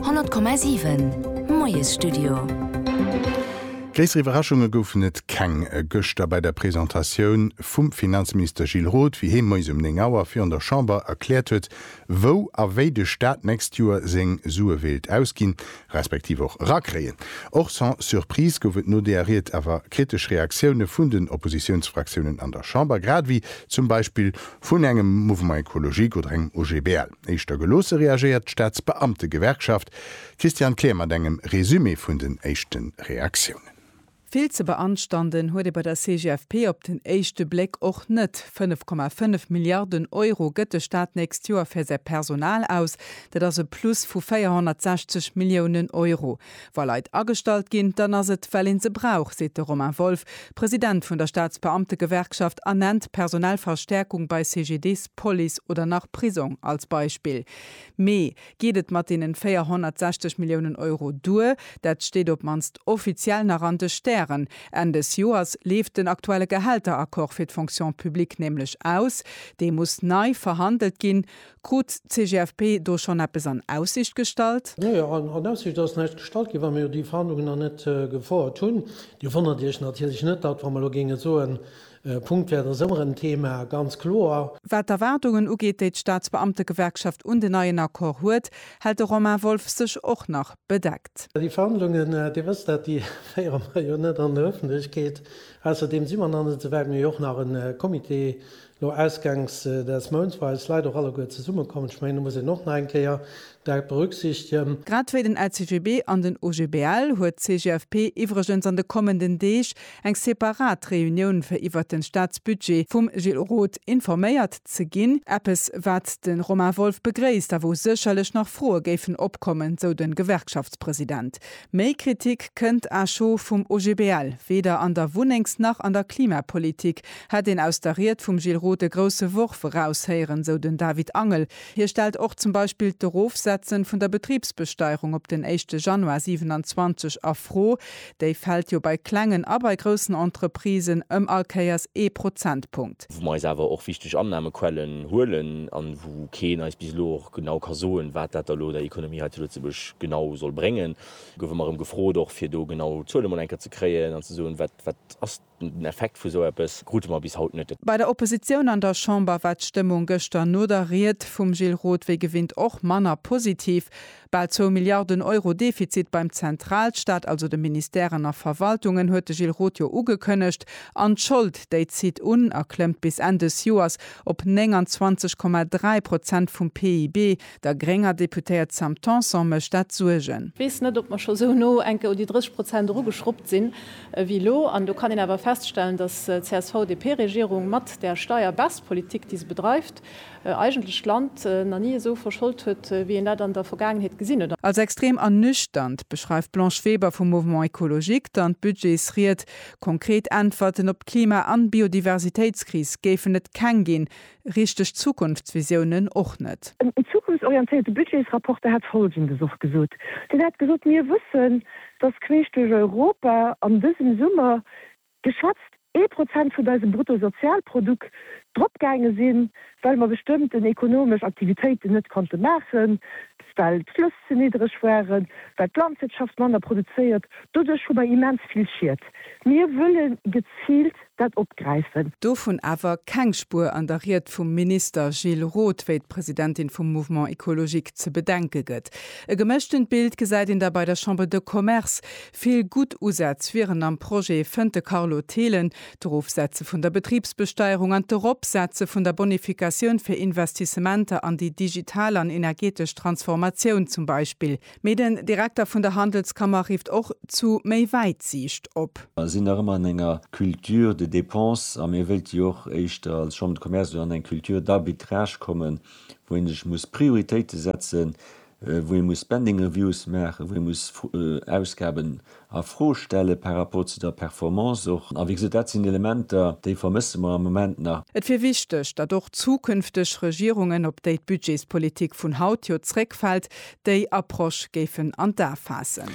100,7 Moiesstudio. Gréisser Iwwerraschunge goufen et keng gëschter bei der Presentatioun vum Finanzminister Gilles Roth, wéi hee moies um 9 Auer virun der Chamber erkläert huet, wou a wéi de Staat d'nächst Joer seng Sue wéilt ausginn, respektiv och erakréien. Och sans surprise gouf et no deeër Ried awer kritesch Reaktioune vun den Oppositiounsfraktiounen an der Chamber, grad ewéi zum Beispill vun engem Mouvement Ecologique oder engem OGBL. Éischter geloosse reagéiert d'Staatsbeamtegewerkschaft. D'Christiane Kleer mat engem Resumé vun den éischte Reaktiounen. Vill ze beanstanden huet ee bei der CGFP op den éischte Bléck och net. 5,5 Milliarden Euro gëtt de Staat d'nächst Joer fir säi Personal aus. Dat ass e Plus vu 460 Milliounen Euro. Wa Leit agestallt ginn, dann ass et, well een se brauch, seet de Romain Wolff, President vun der Staatsbeamtegewerkschaft a nennt personell Verstärkung bei CGDIS, Police oder nach Prisong als Beispill. Mee geet et mat deenen 460 Milliounen Euro duer? Dat steet op mannst offiziell nach an de Stären. Enn des Joers leeft den aktuelle Gehälteraccord fir d'Fonction publique nämlech aus. Dee muss nei verhandelt ginn. Krut d'CGFP do schonn eppes an Aussicht gestallt? Nee, an Aussicht ass näischt gestallt ginn, well mir jo déi Verhandlungen nach net gefouert hunn. Dir wonnert Iech natierlech net, datt wa mer elo géinge soen, e Punktwäert ass ëmmer en Thema, ganz kloer. Wat d'Erwaardungen ugeet, déi d'Staatsbeamtegewerkschaft un den neien Accord huet, hält de Romain Wolff sech och nach bedeckt. Déi Verhandlungen, Dir wësst dat, déi féiere mer jo net an der Ëffentlechkeet. Ausserdeem si mer nach net esou wäit. Mir hu jo och nach e Comité Lo ausgangs des Mounts war eis Leit och alleguer zesumme kommen. Ech mengen, do muss een och nach eng Kéier dat berücksichtegen. Grad wéi den LCGB an den OGBL huet d'CGFP iwwregens an de kommenden Deeg eng separat Reunioun fir iwwert den Staatsbudget vum Gilles Roth informéiert ze ginn. Eppes wat den Romain Wolff begréisst a wou sécherlech nach Froe géifen opkommen, sou den Gewerkschaftspresident. Méi Kritik kënnt acho vum OGBL weder an der Wunnengs nach an der Klimapolitik. Hätt een aus der Ried vum Gilles Roth e grousse Worf eraushéieren, sou den David Angel. Hie stellt och zum Beispill d'Erofsetzen vun der Betribsbesteierung op den éischte Januar 27 a Fro. Déi fält jo bei klengen a bei groussen Entreprisen ëm all Kéiers ee Prozentpunkt. Wou mer eis awer och wichteg Annahmequellen huelen an wou keen eis bis elo och genau ka soen, wat dat da elo der Economie hei zu Lëtzebuerg genau soll bréngen, goufe mer erëm gefrot och fir do genau Zuele mol eng Kéier ze kréien an ze soen, wat ass Den Effekt vu sou eppes krute mer bis haut net. Bei der Oppositioun an der Chamber war d'Stëmmung gëschter no der Ried vum Gilles Roth wéi gewinnt och manner positiv. Bal zwou Milliarden Euro Defizit beim Zentralstaat, also de Ministèren a Verwaltungen, huet de Gilles Roth jo ugekënnegt. An d'Schold, déi zitt un a klëmmt bis Enn dës Joers op 29,3 Prozent vum PIB. Der grénger Deputéiert Sam Tanson mécht dat Suergen. Wees net op mer scho sou no enke un déi 30 Prozent eru geschruppt sinn. ewéi elo. An do kann een awer feststellen, dass d'CSV-DP-Regierung mat där Steier-baisse-Politik, déi se bedreift, eigentlech d'Land nach ni esou verscholt huet, wéi een dat an der Vergaangenheet gesinn huet. Als extrem an nüchternt beschreift d'Blanche Weber vum Mouvement Ecologique dann d'Budgetsried. Konkret Äntwerten op d'Klima an Biodiversitéitskris géifen et keng ginn, Richteg Zukunftsvisiounen och net. En zukunftsorientéierte Budgetsrapporter hätt Folgendes och gesot, Deen hätt gesot, Mir wëssen, datt queesch duerch Europa an dësem Summer geschätzt ee Prozent vun eisem Bruttosozialprodukt dropgaange sinn, well mer bestëmmten ekonomesch Aktivitéiten net konnte maachen, well d'Flëss ze niddreg waren, well d'Landwirtschaft manner produzéiert. Doduerch hu mer immens vill Schied. Mir wëlle geziilt dat opgräifen. Dovun awer keng Spuer an der Ried vum Minister Gilles Roth, wéi d'Presidentin vum Mouvement Ecologique ze bedenke gëtt. E gemëschtent Bild gesäit een da bei der Chambre de Commerce. Vill gutt Usätz wieren am Projet, fënnt de Carlo Thelen. D'Erofsetze vun der Betribsbesteierung an d'Eropsetze vun der Bonificatioun fir Investissementer an déi digital an energetesch Transformatioun zum Beispill. Mee den Direkter vun der Handelskammer rifft och zu méi Wäitsiicht op. Mer sinn nach ëmmer an enger Culture de dépense a mir wëilt jo och éischter als Chambre de Commerce elo an eng Culture d'arbitrage kommen, wou ee sech muss Prioritéite setzen, wou ee muss Spending reviews maachen, wou ee muss Ausgaben a Fro stelle par rapport zu der Performance och. A wéi gesot, dat sinn Elementer, déi vermësse mer am Moment nach. Et wier wichteg, datt och zukünfteg Regierungen, op déi d'Budgetspolitik vun haut jo zréckfält, déi Approche géifen an d'A faassen.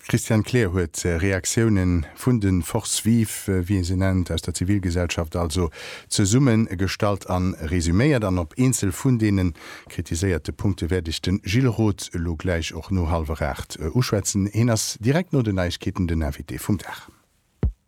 D'Christiane Kleer huet Reaktioune vun de Forces vives, wéi ee se nennt, aus der Zivilgesellschaft also, zesummegestallt a resuméiert an op eenzel vun deene Kritiséierte Punkte wäert ech den Gilles Roth elo gläich och no hallwer 8 uschwätzen. Heen ass direkt no den Neiegkeeten den Invité vum Dag.